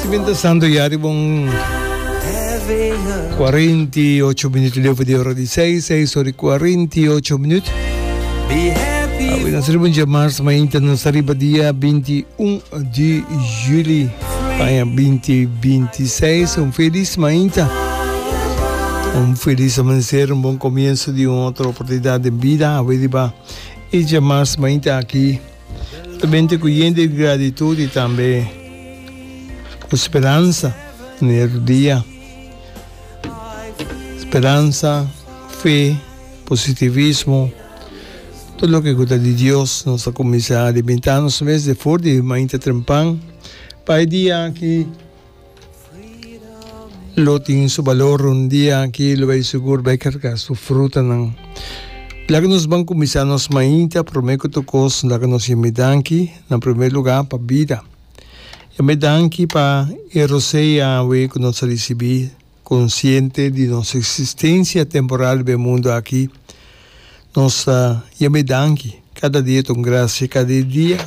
Si bin ta santo ya riba un cuarenta y ocho minuto leufa di ora di seis, seis ora y cuarenta y ocho minuto. Awi na saliba un jamars, ma inta na saliba dia 21 di juli, aña 2026. Un feliz ma inta. Un feliz amanecer, un bon comienzo di un otro oportunidad den bida. Awi riba e jamars ma inta aki. Ta bende ku yen di gratitud i tambe ku speransa na e otro dia. Speransa, fe, positivismo, tur loke ku ta di Dios nos ta kuminsá alimentá nos mes di for di mainta trempan pa e dia aki. Lo tin su balor un dia aki lo bai sugur bai carga su frutanan. Laga nos ban cuminsa nos mainta prome cu tur cos laga nos yam'e danki na prome luga pa bida. Yam'e danki pa e rosea awe cu nos a ricibi. Konsiente di nos eksistensia temporal riba e mundu aki, nos ta yama e danki. Kada dia ta un grasia, kada e dia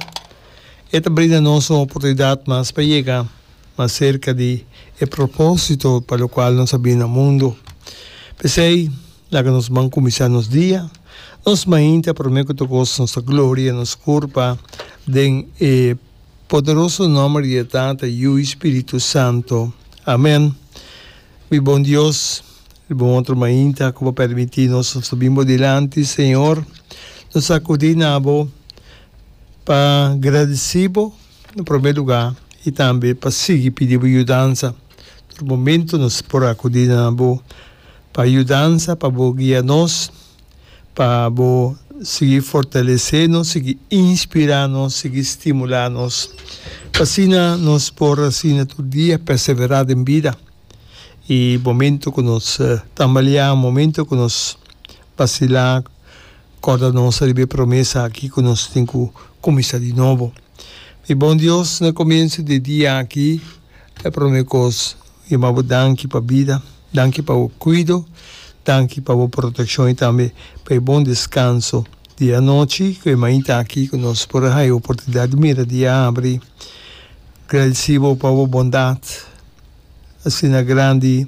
e ta brinda nos un oportunidat mas pa yega mas serka di e propósito pa lo kual nos a bini na mundu. P'esei, laga nos ban kuminsá nos dia nos mainta promé ku ta gosa nos ta gloria nos kurpa den e. poderoso nomber di e Tata, Yu i Spiritu Santo. Amen. Mi bon Dios, di bon otro mainta ku bo permití nos ta bin bo dilanti, Señor. Nos akudí na bo pa gradesí bo na promé lugá i tambe pa sigui pidi bo yudansa. Tur momentu nos por akudí na bo pa yudansa, pa bo guia nos. pa bo sigui fortalesé nos, sigui inspirá nos, sigui stimulá nos, pa asina nos por asina tur dia perseverá den bida. I momentu ku nos tambaleá, momentu ku nos basilá, kòrda nos riba e promesa akí ku nos tin ku kuminsá di nobo. Mi bon Dios, na komiensu di e dia akí. E prome kos mi yama bo danki pa bida, danki pa bo kuido, danki pa bo protekshon i tambe pa e bon deskanso di anochi ku e mainta aki ku nos por a haña e oportunidat di mira di a abri. Gradesí bo pa bo bondat asina grandi,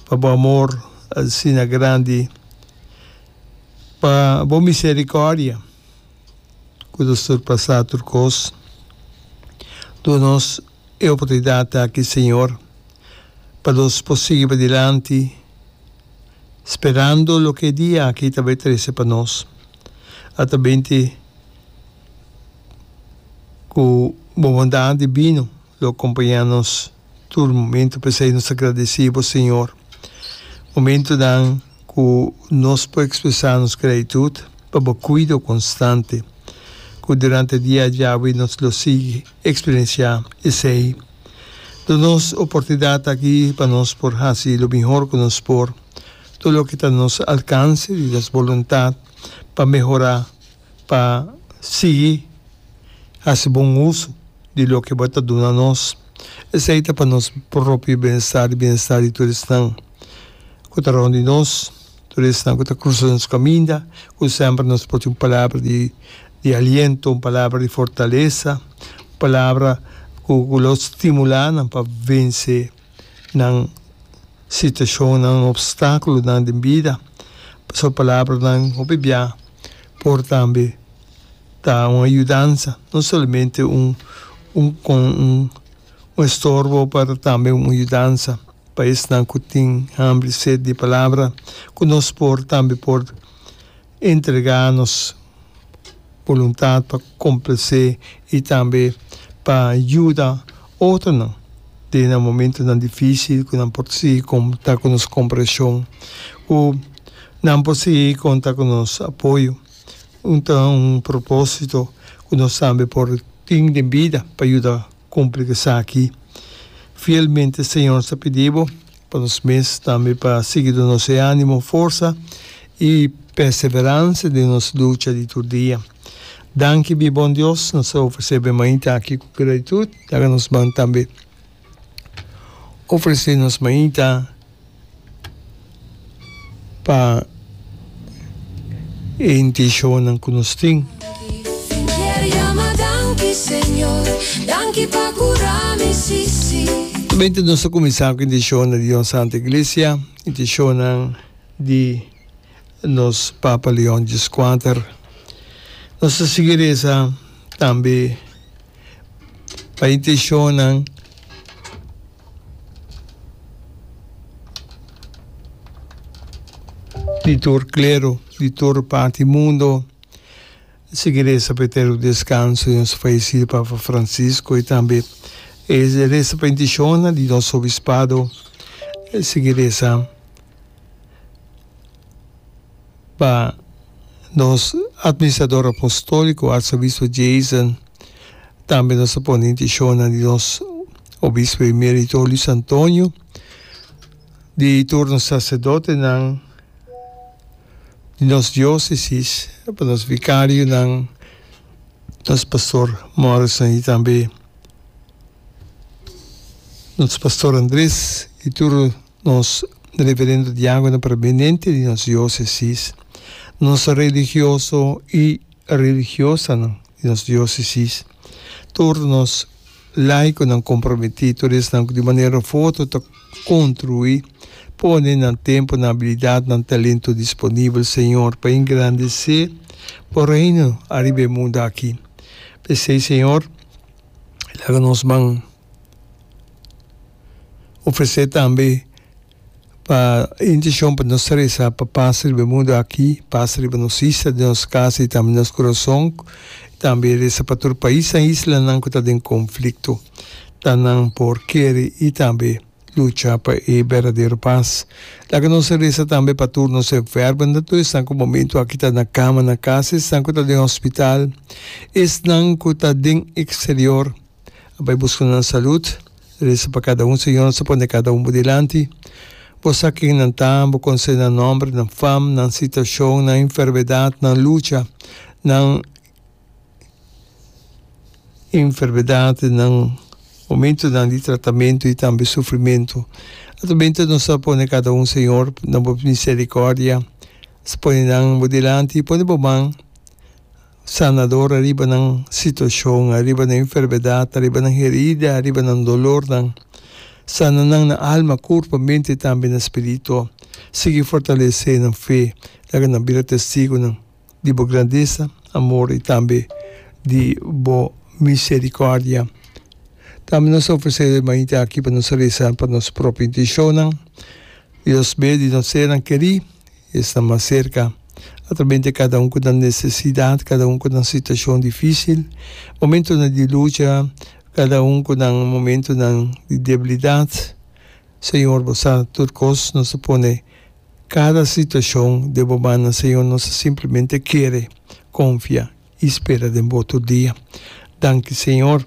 pa bo amor asina grandi, pa bo miserikòrdia. cu lo surpasa tur cos. Duna nos e oportunidad aki, Señor, pa nos por sigui padilanti sperando loke e dia aki ta bay trece pa nos. Ata binti cu bo bondad divino. Lo acompaña nos tur momento p'esei nos ta gradeci bo Señor. Momentonan cu nos por expresa nos gratitud pa bo cuido constante cu durante dia a diawe nos lo sigui experiencia esei. Duna nos oportunidad aki pa nos por haci lo mihor cu nos por, tur loke ta nos alcance di nos boluntad pa mehora. pa sigui hasi bon uso di loke bo ta duna nos. Esei ta pa nos propio bienestar i bienestar di tur esnan ku ta rònt di nos, tur esnan ku ta krusa nos kaminda, ku semper nos por tin un palabra di aliento, un palabra di fortalesa, un palabra ku lo stimulá nan pa vense. nan situacionnan, obstaculonan den bida. Pasobra palabranan hopi bia por tambe ta un ayudansa, no solamente un un estorbo pero tambe un ayudansa pa esnan cu tin hambri y sed di Palabra, cu nos por tambe por. entrega nos boluntat pa komplase i tambe pa yuda otronan den nan momentunan difísil ku nan por sigui konta ku nos kompreheshon, ku nan por sigui konta ku nos apoyo. Un ta un propósito ku nos tambe por tin den bida pa yuda kumpli esaki. Fielmente, Señor, ta pidi bo pa nos mes, tambe pa sigui donos'e animo, forsa i perseveransa den nos lucha di tur dia. Danki mi Bon Dios, nos ta ofresé be mainta aki ku gratitud, laga nos ban tambe ofresé nos mainta. pa e intencionnan cu nos tin. Primermente nos ta cuminsa cu intencionnan di Dios Santo Iglesia, intencionnan di nos Papa Leon Djiscuater. Nos ta sigui reza tambe pa intencionnan. di tur klero, di tur parti mundo, si ke resa pa e tera un deskanso di nos fayesido Papa Francisco, i tambe e resa pa intishonnan di nos Obispado, si ke resa. Pa nos Administrador Apostolico Arzobispo Jason, tambe nos ta pone intishonnan di nos Obispo Emerito Luis Antonio, di tur nos Sacerdotenan di nos Diocesis, pa nos Vicarionan, nos Pastor Morrison y tambe nos Pastor Andres y tur. Nos referendo di anguila permanente di nos diosesis, nos religioso y religiosanan di nos diosesis, tur nos laiconan comprometi, tur esnan cu di manera foto ta contrui, pone nan tempo, nan habilidad, nan talento disponibel, Señor, pa engrandece Bo Reino ariba e mundo aki. P'esei, Señor, laga nos man. Ofresé tambe pa e intishon pa nos ta resa pa pas riba e mundu aki, pas riba nos isla, den nos kasa i tambe nos kurason, i tambe resa pa tur paisnan i islanan ku ta den konflikto, ta nan por kere i tambe lucha pa e berdadero pas. Laga nos a resa tambe pa tur nos enfermonan, tur esnan ku momentu aki ta na kama na kasa, esnan ku ta den hospital, esnan ku ta den eksterior. a bai buska nan salud, resa pa kada un, Señor, nos ta pone kada un bo dilanti, bo sa ken nan ta, bo conoce nan nomber, nan fam, nan situacion, nan enfermedad, nan lucha, nan enfermedad, nan momentonan di tratamento y tambe sufrimento, atramente nos ta pone cada un, Señor, na bo misericordia, nos ta pone nan bo dilanti, pone bo man. sanador ariba nan situashon, ariba nan enfermedat, ariba nan herida, ariba nan dolornan. Sana nan na alma, kurpa, mente i tambe na spiritu. Sigui fortalesé nan fe. Laga nan bira testigunan di bo grandesa, amor i tambe di bo miserikòrdia. Tambe nos ta ofresé e mainta aki pa nos resa pa nos propio intenshonan. Dios be di nos seran kerí Esta mas serka. A trabén te kada un ku ta nesesidat, kada un ku ta na situashon difísil, momentunan di lucha, kada un ku nan momentunan di debilidat. Señor, Bo sa tur kos. Nos ta pone kada situashon den Bo mannan, Señor. Nos ta simplemente kere konfia i spera den Bo tur dia. Danki, Señor.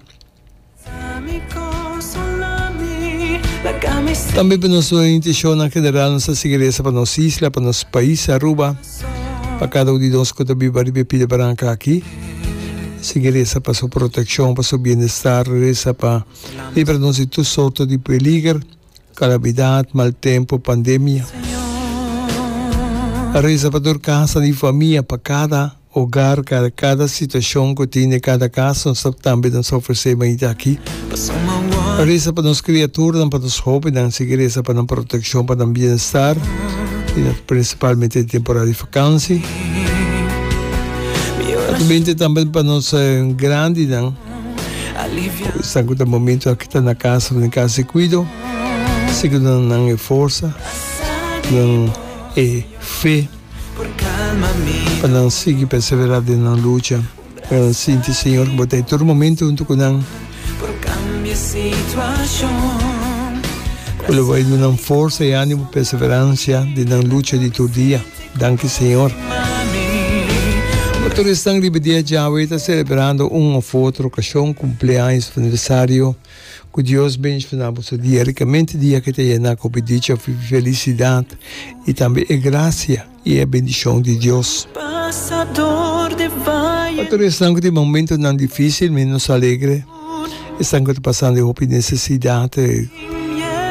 Tambe pa nos orientacionnan general nos ta sigui resa pa nos isla, pa nos pais Aruba, pa cada un di nos cu ta biba riba e pida branca aki. Sigui resa pa su proteccion, pa su bienestar, resa pa libra nos di tur sorto di peliger, calamidad, mal tempo, pandemia. Resa pa tur casanan y famia, pa cada. Hogar Cada cada situacion cu tin den cada cas nos ta tambe ta nos ta ofrece bañita aki pa reza pa nos criaturnan pa nos hobennan sigui reza pa nan proteccion pa nan bienestar y na principalmente den temporada di vakansi ta tu bente tambe pa nos grandinan cu esnan cu ta momento aki ta na cas of den cas di cuido sigui duna nan e forsa duna nan e fe. Pa nan sigui perseverá den nan lucha. Pa nan sinti Señor cu bo ta e tur momento hunto cu nan. Cu lo bay duna nan forsa y animo perseverancia den nan lucha di tur dia. Danki Señor. Pa tur esnan riba dia djawe ta celebrando un of otro ocasion, cumpleaños of aniversario. Ku Dios benshna na boso dia rikamente, dia ku e ta yená ku bidicha, felisidat i tambe e grasia i e bendishon di Dios. Pa tur esnan ku tin momentunan difísil ménos alegre, esnan ku ta pasando e hopi nesesidat,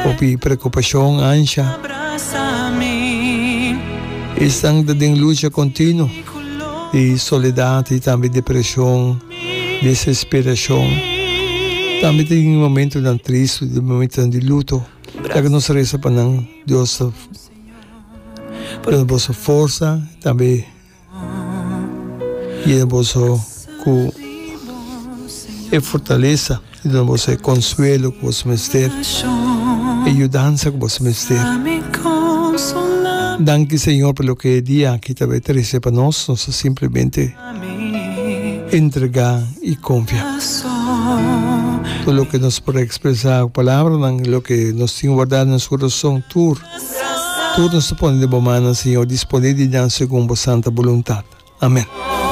hopi preokupashon, ansha, i esnan ku ta den lucha kontinuo di soledat i tambe depreshon. desesperashon. Tambe ta tin momentunan tris, momentunan di luto. Laga nos resa pa nan, Dios ta duna boso forsa, tambe yena boso ku e fortalesa. E duna boso e konsuelo ku boso mester, e yudansa ku boso mester. Danki Señor pa loke e dia aki ta bai trese pa nos, nos ta simplemente entregá i konfia. Tur loke nos por ekspresá ku palabranan i loke nos tin wardá den nos kurason tur, tur nos ta pone den bo mannan Señor, disponé di nan segun bo santa boluntat. Amèn.